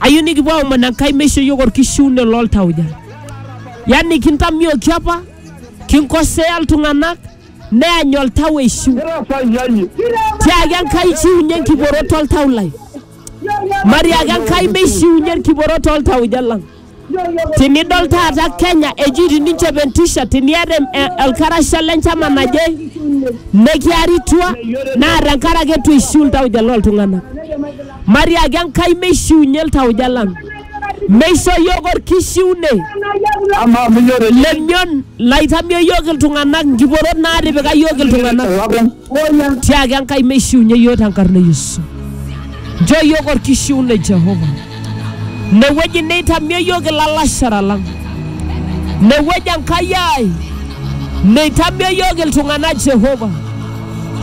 ayieu nikipuo aomon Enkai meisho iyiook orkishiune loltauja. Yani kintamioki apa, kinkosea iltung'anak, neany oltau eishiu. Tiaki Enkai chiunye enkiporot oltau lai. Matiaki Enkai meishiunye enkiporot oltauja lang. Tinidol taata Kenya eji tininchop entishat tiniata em- e- olkarasha le nchama naje nekiaritua naa tenkaraki eitu eishiu iltauja looltung'anak. Matiaki Enkai meishiunye iltauja lang. Meisho iyiook orkishiune Amaa minyor lemion laitamio iyiook iltung'anak nkiporot naatipika iyiook iltung'anak. Tiaki Enkai meishiunye iyiook tenkarna e Yesu. Nchoo iyiook orkishiunoi Jehova. Inewueji neitamie iyiook ilalashera lang. Inewueji Enkai ai neitamie iyiook iltung'anak Jehova.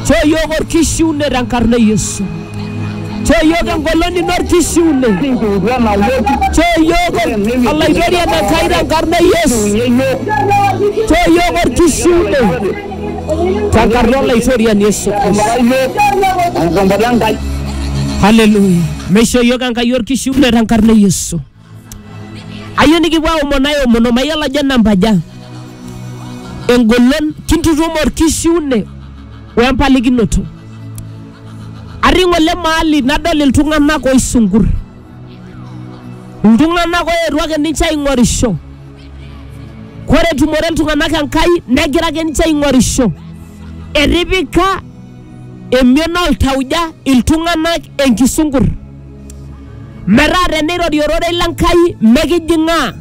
Nchoo iyiook orkishiunoi tenkarna e Yesu. Nchoo iyiook engolon ino orkishiunoi. Nchoo iyiook olaitoriani Enkai tenkarna e Yesu. Nchoo iyiook orkishiunoi. Tenkarna Olaitoriani Yesu Kristo. Enkombata Enkai. Haleluya. Meisho iyiook Enkai orkishiunet tenkarna e Yesu. Ayieu nikipuo aomon aomono mayiolo ajo enamba aja. Engolon kintutum orkishiune we mpalikinoto. Atii ng'ole mahali nadol iltung'anak oisungur. Iltung'anak oetuo ake ninche aing'orisho. Kore etumore iltung'anak Enkai negira ake ninche aing'orisho. Etipika emion oltauja iltung'anak enkisunkur. Metaa teneirori ororei le Nkai mekijing'aa,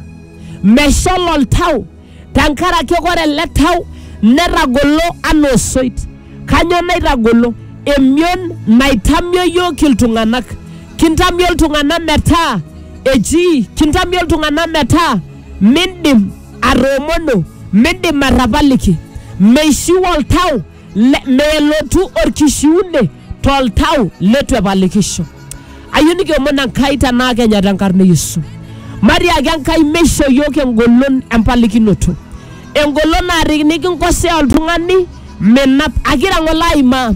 meshal oltau tenkaraki kore ele tau netagolo anaa osoit. Kanyoo naitagolo? Emion naitamio iyiook iltung'anak. Kintamio iltung'anak metaa eji, kintamio iltung'anak metaa mindim atoomono, mindim atapaliki. Meishiu oltau, melotu orkishiune toltau leitu epalikisho. Ayieu nikiomon Enkai tenaa kenya tenkarna e Yesu. Matiaki Enkai meishoo iyiook engolon empalikinoto. engolon naarik nikinkosea oltung'ani menap akira ng'ole aimaa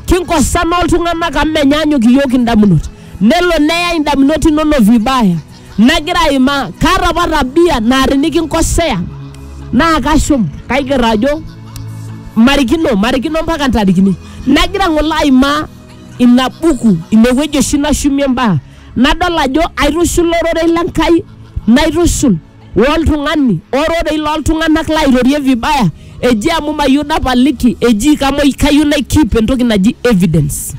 kinkosana oltung'anak amu menyaanyuk iyiook indamunot nelo neya indamunot inonok vibaya nagira aimaa kaata apa tabia naa tinikinkosea naa kashum kaiger ajo marikino marikino mpaka ntarikini nagira ng'ole aimaa ina buku inewueji oshi nashumie mbaa nadol ajo aitushula ororei le Nkai naitushul woltung'ani, ororei loltung'anak lairorie vibaya, eji amu mayieu napaliki, eji kamoi kayieu nai keep entoki naji evidence.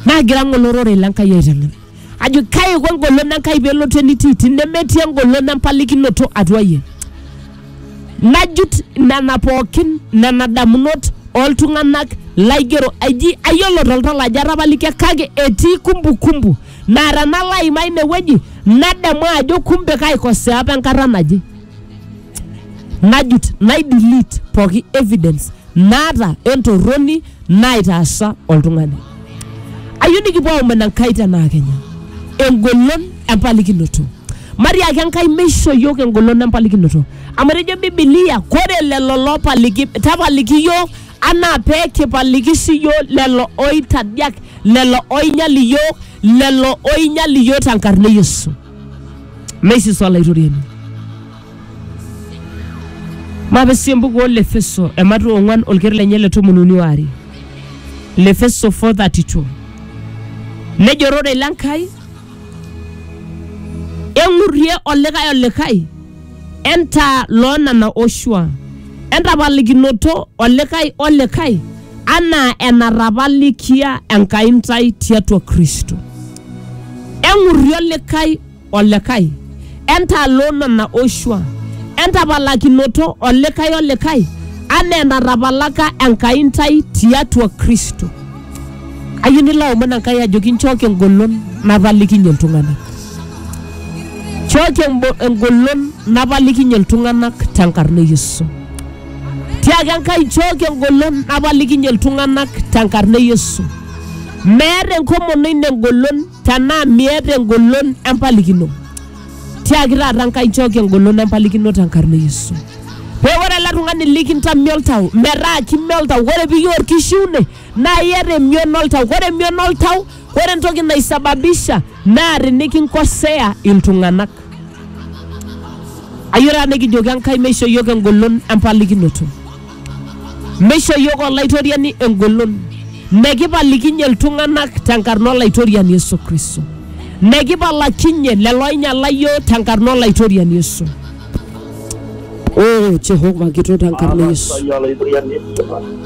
Nagira ng'ole ororei le Nkai aiteng'en. Ajo kai iko engolon e Nkai pelotu enitii tenemetii engolon empalikinoto atua yie. Najut nena pookin nena damunot oltung'anak laigero eji ayiolo toltau ajo atapalikia kake etii kumbukumbu naa tenalo aimaa ine wueji nadamu ajo kumbe kaikosea apa enkata naje najut nai delete pooki evidence naata entorroni naitaasa oltung'ani ayieu nikipuo aomon enkai tenaa kenya engolon empalikinoto matiaki enkai meisho yiok engolon empalikinoto amu etejo bibilia kore lelo lopaliki tapaliki yiok anaa pee kipaliki siiyiook lelo oitadiak lelo oinyal iyiook lelo oinyal iyiook tenkarna e Yesu meisisa olaitoriani mape sii embuku oo Lefeso ematu ong'uan olker lenye le tomon uni waare Lefeso 4:32 nejo ororei le Nkai eng'urrie olikae olikae entaa loo nena oshua, entapalikinoto olikae olikae anaa enatapalikia Enkai intae tiatua Kristo. Eng'urri olikae olikae, entaa loo nena oshua, entapalakinoto olikae olikae anaa enatapalaka Enkai intae tiatua Kristo. Ayieu nilo aomon Enkai ajoki nchooki engolon napalikinye iltung'anak. Nchooki embo- engolon napalikinye iltung'anak tenkarna e Yesu. Tiaki Enkai nchooki engolon napalikinye iltung'anak tenkarna e Yesu. Meeta enkomono ino engolon Tenaa miata engolon empalikino, tiaki taata Nkai nchooki engolon empalikino tenkarna e Yesu. Pee ore ele tung'ani likintamio oltau metaa kime oltau, ore piiyieu orkishiune naa iata emion oltau. Ore emion oltau, ore entoki naisababisha naa tinikinkosea iltung'anak. Ayeu taata nekijoki Enkai meishoo iyiok engolon empalikinoto. Meisho iyiook Olaitoriani engolon, mekipalikinye iltung'anak tenkarna Olaitoriani Yesu Kristo, mekipalakinye lelo oinyiala iyiook tenkarna Olaitoriani Yesu. Oh Jehova kitok tenkarna Yesu,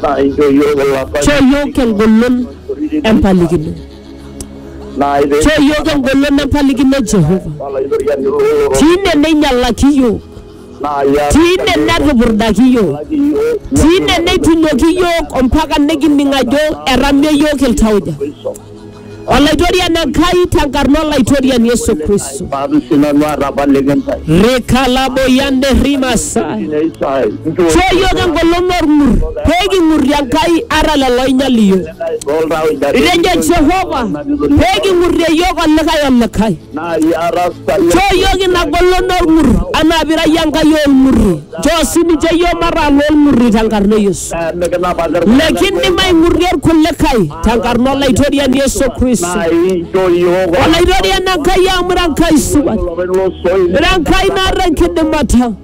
naa inchoo iyiook ilapa choo iyiook engolon empalikino, choo iyiook engolon empalikino Jehova, Olaitoriani loo tine neinyialaki iyiook Tine netupurdaki iyiook, tine neitunoki iyiook ompaka nikining ajo etamio iyiook iltauja. Olaitoriani Enkai tenkarna Olaitoriani Yesu Kristo. Rikalaboyande rimasai. Choo iyiook engolon olng'ur pee king'urrie Enkai ata lelo oinyal iyiook. Itejo Jehova pee king'urrie iyiook olikae olikae. Nchoo iyiook ina golon olng'ur anaa pira iyie Enkai oolng'urri. Nchoo sii ninche iyiook mataa loolng'urri te nkarna e Yesu. Nikindim aing'urrie ilkulikae te nkarna Olaitoriani Yesu Kristo. Olaitoriani Enkai amu ira Enkai supat. Ira Enkai naata enkidimata.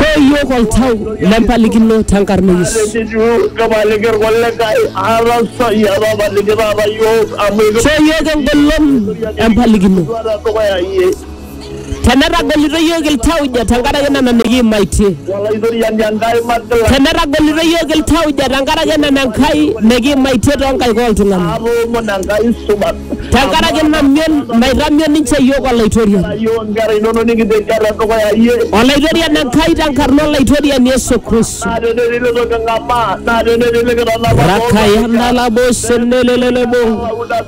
Soyiok oltau lempalikino tenkarna Yesu. Soyiok engolon empalikino. Tenetagolito iyiook iltauja tenkaraki nena nikiimaitie. Olaitoriani Enkai magila Tenetagolito iyiook iltauja tenkaraki nena Enkai nikiimaitie too nkaik oo ltung'ana. atoomon Enkai supat. Tenkaraki ina mion naitamion ninche iyiook Olaitoriani. Ayio inkera inonok nikitejia te dukuya iyie. Olaitoriani Enkai tenkarna Olaitoriani Yesu Kristo. Naa tenetii litu king'amaa, naa tenetii likitanapa Rakayana labo senelelelebo. Pauda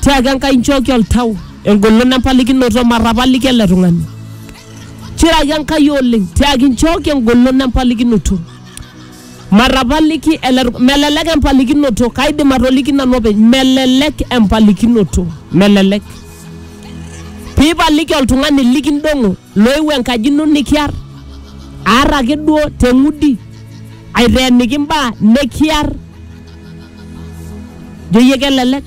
Tiaki Enkai nchooki oltau, engolon empalikinoto, matapaliki ele tung'ani. Chiraki Enkai oleng, tiaki nchooki engolon empalikinoto. Matapaliki ele tung'ani, melelek empalikinoto, kaidim atoliki nanu openy, melelek empalikinoto, melelek. Piipaliki oltung'ani likindong'o Loewuo enkaji ino nikiar, aar ake duo te ng'udi, aiteeniki imbaa nikiar. Ijo iyie kelelek?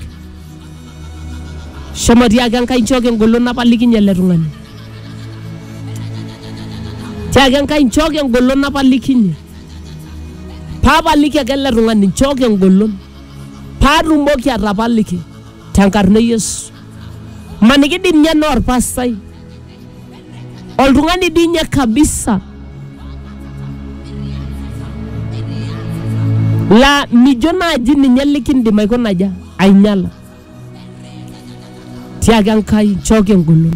Shomo tiaki Enkai nchooki engolon napalikinye ele tung'ani. Tiaki Enkai nchooki engolon napalikinye. Paapaliki ake ele tung'ani, nchooki engolon paatumoki atapaliki tenkarna e Yesu. Maniki dii ninye naa olpastai. oltung'ani dii ninye kabisa laa mijo naaji ninye likindim aikonaja ainyala tiaki Enkai nchooki engolon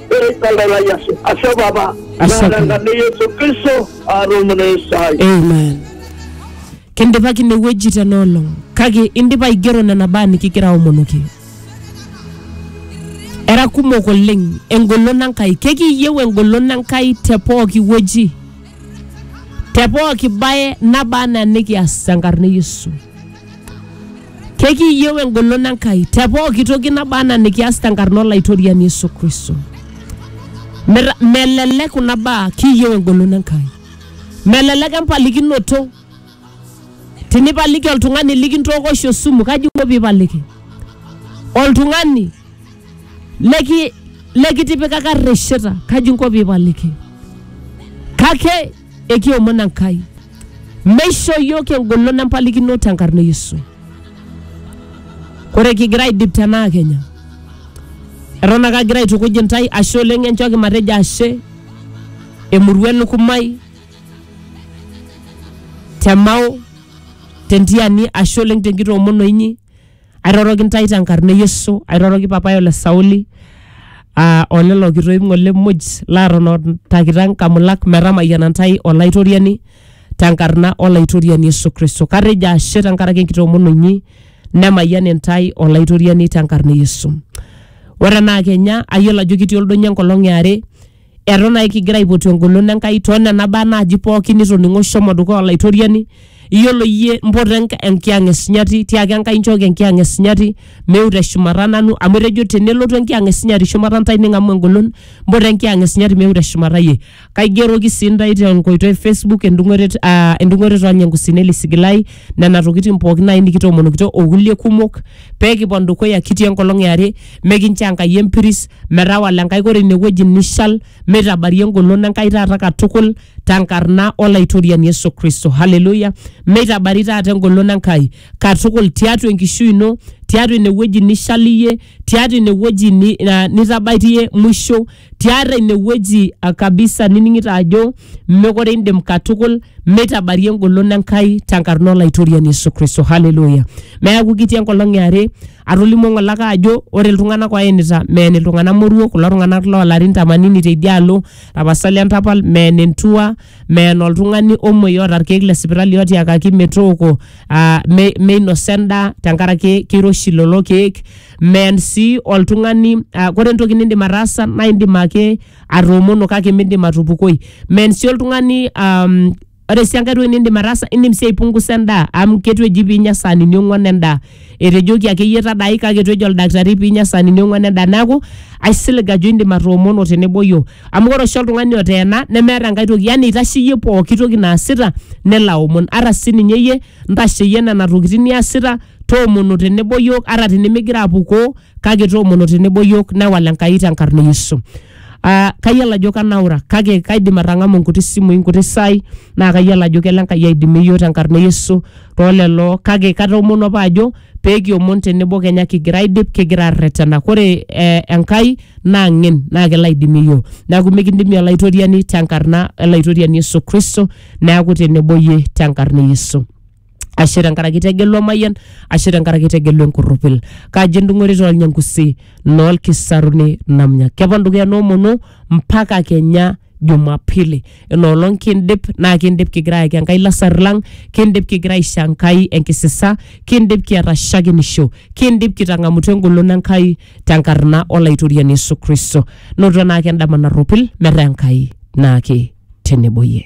ekalalayaso asho baba Ashe. narangane yesu kristo arumune esai amen kindipaki inewueji tena olong kake indipa aigero nena baa nikigira aomonoki era kumok oleng engolon enkai kekiyieu engolon enkai te pooki wueji te pooki baye naba anaa nikias tenkarna e yesu Kekiiyieu engolon Enkai te pooki toki naba anaa nikias tenkarna Olaitoriani Yesu Kristo. Meta- Melelek kuna baa kiiyieu engolon Enkai. Melelek empalikinoto. Tinipaliki oltung'ani likintooko oshi osumu, kaji inko piipaliki? Oltung'ani leki lekitipikaka rresheta, kaji inko piipaliki? Kake Ekiomon Enkai meishoo iyiook engolon empalikino tenkarna e Yesu. Ore kigira aidip tenaa kenya, eton ake agira aitukuj intae ashe oleng enchooki matejo ashe emurua e Lukumai, te Mao, te Ntiani ashe oleng tenkitoomono inyi. airoroki ntae tenkarna e Yesu, airoroki papaai ole Sauli aa o lelo kitoip ng'ole muj laatotontakita nkamulak metamayiana ntae Olaitoriani tenkarna Olaitoriani Yesu Kristo. Katejo ashe tenkaraki enkitoomono inyi nemayian intae Olaitoriani tenkarna e Yesu. Ore enaa kenya ayiolo ajo kitii oldonyo enkolong e are Eton ake kigira aipotu engolon Enkai too nena baa naaji pooki nitoning'o shomo dukuya Olaitoriani. Iyiolo iyie mpoto enk- enkiyang'et sinyati tiaki Enkai nchooki enkiyang'et sinyati meu te shumata nanu amu etejo tenelotu enkiyang'et sinyati shumata intae ning'amu engolon mpoto enkiyang'et sinyati meu te shumata iyie. Kaigeroki sii intae te nkoitoi e Facebook endung'oto et- aa endung'oto e Tonya Enkusi Nelly Sigilai nena tokitin pooki naaji nikitoomonokito o kulie kumok. pee kipon dukuya kitii enkolong e are, mikincho Enkai empiris, metawala Enkai ore ine wueji nishal, meitabarie engolon Enkai taata katukul tenkarna Olaitoriani Yesu Kristo. Haleluya! Meitabari taata engolon Enkai katukul tiatua enkishui ino, tiatua ine wueji nishal iyie, tiatua ine wueji ni- na- nitabaitie mwisho. tiatua inewueji ah, kabisa nining'ito ajo mekore indim katukul meitabarie engolon enkai tenkarna olaitoriani yesu kristo haleluya neaku kitii enkolong eare atolimuo ng'ole ake ajo ore iltung'anak oenita meen iltung'anak moruo kulo tung'anak loolarin tamanini teidialo tapasali entapal meen entua meen oltung'ani omuoi oota irkeek le sipitali otiakaki metooko ah, me- meinosa endaa tenkaraki keiroshi lelo keek men sii oltung'ani uh, kore entoki nindim ataasa naa indim ake atoomono kake mindim atupukoi men sii oltung'ani um, ore sii enkae toki nindim ataasa indim sii aipungusa endaa amu ketu eji piinya saanini ong'uan endaa etejoki akeyie tadai kake etu ejo oldakitari piinya saanini ong'uan endaa neeku aisilig ajo indim atoomono tenebo yiok amu ore oshi oltung'ani oteena nemeeta enkae toki yani itasheyie pooki toki naasita nelo aomon ata sininye iyie ntasheyie nena tokitin niasita toomono tenebo yiok ata tinimigira apukoo kake toomono tenebo yiok newal Enkai tenkarna e Yesu. Uh, kayiolo ajo kanaura kake kaidim atang'amu nkuti simui nkuti sai naa kayiolo ajo kelo Enkai aidimie yiok tenkarna e Yesu toolelo kake katoomono apa ajo peekiomon tenebo kenya kigira aidip kigira arretena kore eh, Enkai naa ng'en naa kelo aidimie yiok neeku mikindimie olaitoriani tenkarna olaitoriani Yesu Kristo neeku tenebo iyie tenkarna e Yesu. ashe tenkaraki itegelu emayian ashe tenkaraki itegelu enkurrupil kaji endung'orita olnyangusi noolkisaruni namnya kepon dukuya noomonu mpaka kenya jumapili inoolong kindip naa kindip kigira ayaki enkai lasar lang kindip kigira aisho enkai enkisisa kindip kiata shakenisho kindip kitang'amutua engolon enkai tenkarna olaitoriani yesu kristo noto naake endama narropil metaa enkai naake tenebo yie